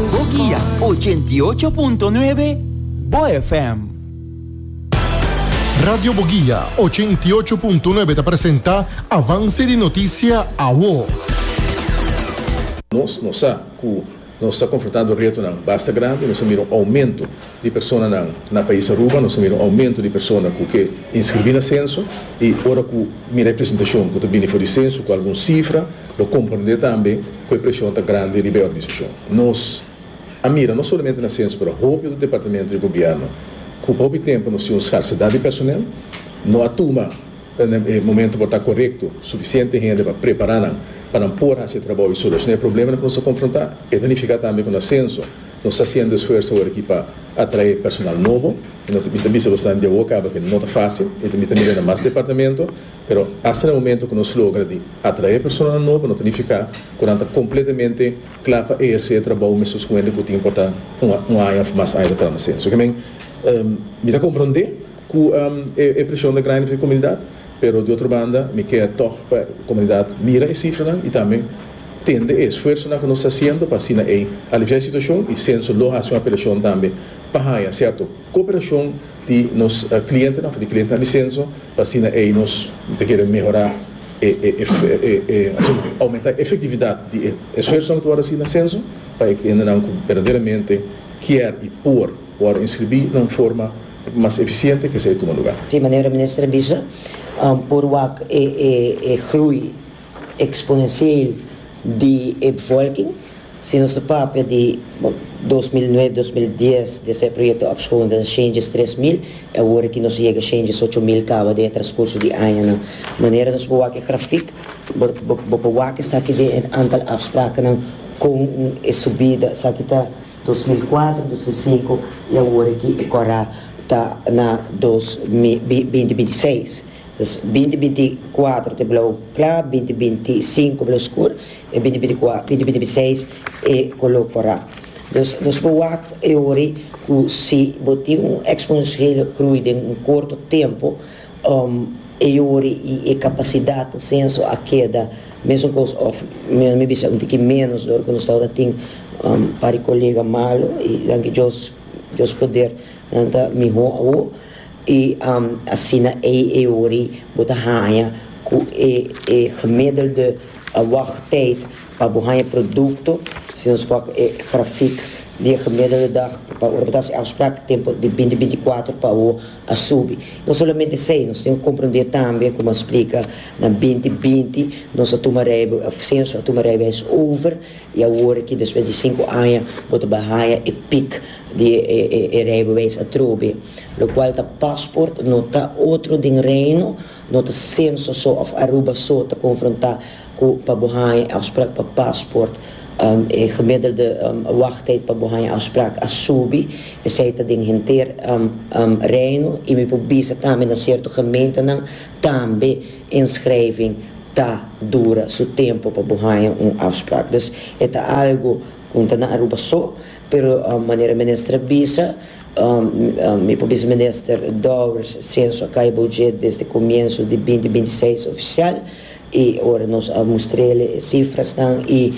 Bo guia ochenta i ocho punto nuebe, Bo FM. Radio Bo Guia ochenta i ocho punto nuebe ta presenta Avance di Noticia Awo. Nos no sa cu nos ta confronta door retonan basta grandi. Nos a mira un aumento di personanan na pais Aruba. Nos a mira un aumento di persona cu ke inscribi na censo. Y ora cu mira e presentacion cu ta bini for di censo cu algun cifra, lo comprende tambe. ku e preshon ta grandi riba e organisashon. Nos a mira no solamente na Sens pero hopi otro departamento di gobièrnu ku hopi tempu nos tin un skarsidat di personel, no a tuma e momento por ta korekto sufisiente hende pa prepará nan pa nan por hasi e trabou i solushona e probleman ku nos ta konfrontá. E ta nifiká tambe ku na Senso nos ta hasiendo esfuerso awor aki pa atraé personal nobo i no ta bisa bo esnan di awo kaba ke no ta fásil i tambe ta mira na mas departamento Pero asta na momento cu nos logra di atrae personanan nobo no ta nifica cu nan ta completamente cla pa eherce e trabou mescos cu hende cu tin por ta un aña of mas aña ta trama sin. So que men mi ta comprende cu e presion ta grandi pa e comunidad pero di otro banda mi kier tog pa e comunidad mira e cifranan y tambe tende e esfuersonan cu nos ta haciendo pa asina ey alivia e situacion y censo lo haci un apelacion tambe pa haya cierto Cooperashon di nos clientenan of di clientenan di censo pa asina ey nos ta kere mehora e aumenta e efectividad di e esfuersonan cu ta word haci na censo pa e gendenan cu berdaderamente kier y por word inscribi na un forma mas eficiente cu esey tuma lugar. Di manera Minister a bisa por wak e groei. exponencieel di e bevolking. Si nos ta papia di dos mil nuebe, dos mil dies di esei proyecto ap schoon den shentjes tres mil y awor aki nos a yega shentjes ocho mil caba den e transcurso di añanan. Manera nos por wak e grafiek bo por wak esaki den e antal afsprakennan con e subida esaki ta dos mil cuatro, dos mil cinco y awor aki e cora ta na dos mil binti binti seis. Pues binti binti i kuatro te blou kla, binti binti i sinku blou skur, i binti binti i kua, binti binti i seis e koló korá. Dus nos por wak e ori ku si bo tin un eksponensiële grui den un korto tempu, e ori i e kapasidat na senso a keda mesun kos òf mi mi bisa un tiki ménos di ora ku nos tabata tin pari kolega malu i danki Dios Dios poder nan ta mihó awor. I asina ei e ori bo ta haña ku e e gemiddelde wagtijd pa bo haña produkto, si nos wak e grafik di e gemiddelde dag pa ora bo ta hasi afsprak, tempu di binti binti kuater pa awo a subi. No solamente esei, nos tin ku komprendé tambe, komo a splika, na binti binti nos a tuma reibe, senso a tuma reibeis over, i awor aki despues di sinku aña bo ta bai haña e pik. di e rijbewijs a trobe, lokual ta pasport no ta otro den Reino, no ta senso so of Aruba so ta konfrontá ku pa bo haña e afsprak pa pasport, e gemiddelde wachtijd pa bo haña afsprak a subi, esei ta den henter Reino, i mi por bisa tambe na sierto gementenan tambe inschrijving ta dura su tempo pa bo haña un afsprak. Dus e ta algu ku no ta na Aruba so. Pero manera minister a bisa, mi por bisa minister Dowers senso a kai bodje desde comienso di binti binti seis oficial y ora nos a mustrele e cifrasnan y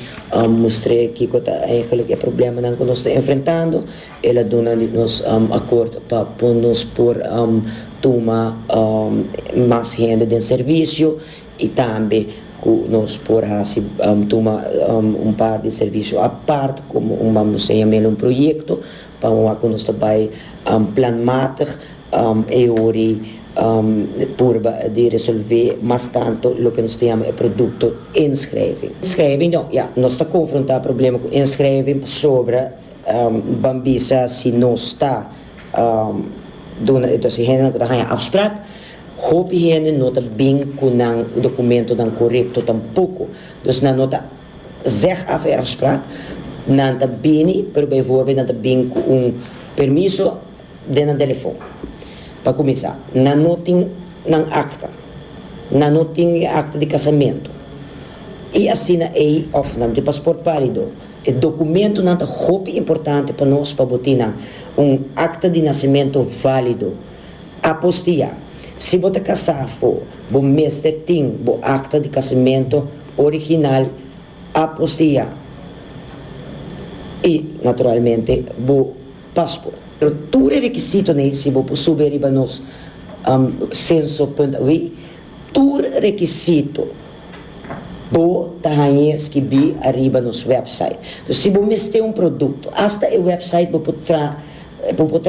mustre kico ta eigenlic e problemanan cu nos ta enfrentando el a duna di nos acord pa nos por tuma mas hende den servicio. y tambe cu nos por haci tuma un par di servicio apart como un bambo sa yama el un proyecto pa un wak cu nos ta bay planmatig e ori purba di resolve mas tanto loke nos ta yama e producto inschrijving. Inschrijving no ya nos ta confronta problema cu inschrijving pasobra ban bisa si nos ta duna entonces e hendenan cu ta haya afspraak Hopi hende no ta bin ku nan dokumentonan korekto tampoko. Dus nan no ta zeg af e afspraak. Nan ta bini, pero bijvoorbeeld nan ta bin ku un permiso den nan telefon. Pa kuminsá, nan no tin nan akta. Nan no tin e akta di kasamentu. I asina ei òf nan no tin pasport válido. E dokumentonan ta hopi importante pa nos pa bo tin nan un akta di nasementu válido. Apostia, Si bo ta kasá afó, bo mester tin bo akta di kasimentu original apostia i, naturalmente, bo pasport. Pero tur e rekisito nei, si bo por subi riba nos senso punt a wi, tur rekisito bo ta hañ'é skibí ariba nos wèpsait. Si bo mester un produkto, asta e wèpsait bo por tra Bo por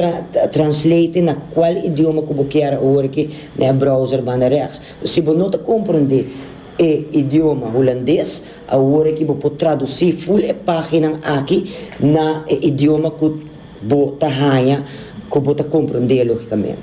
translate na cual idioma cu bo kier awor ki na e browser banda rechts. So si bo no ta comprende e idioma Hulandes, awor aki bo por traduci full e paginan aki na e idioma cu bo ta haya cu bo ta comprende logicamente.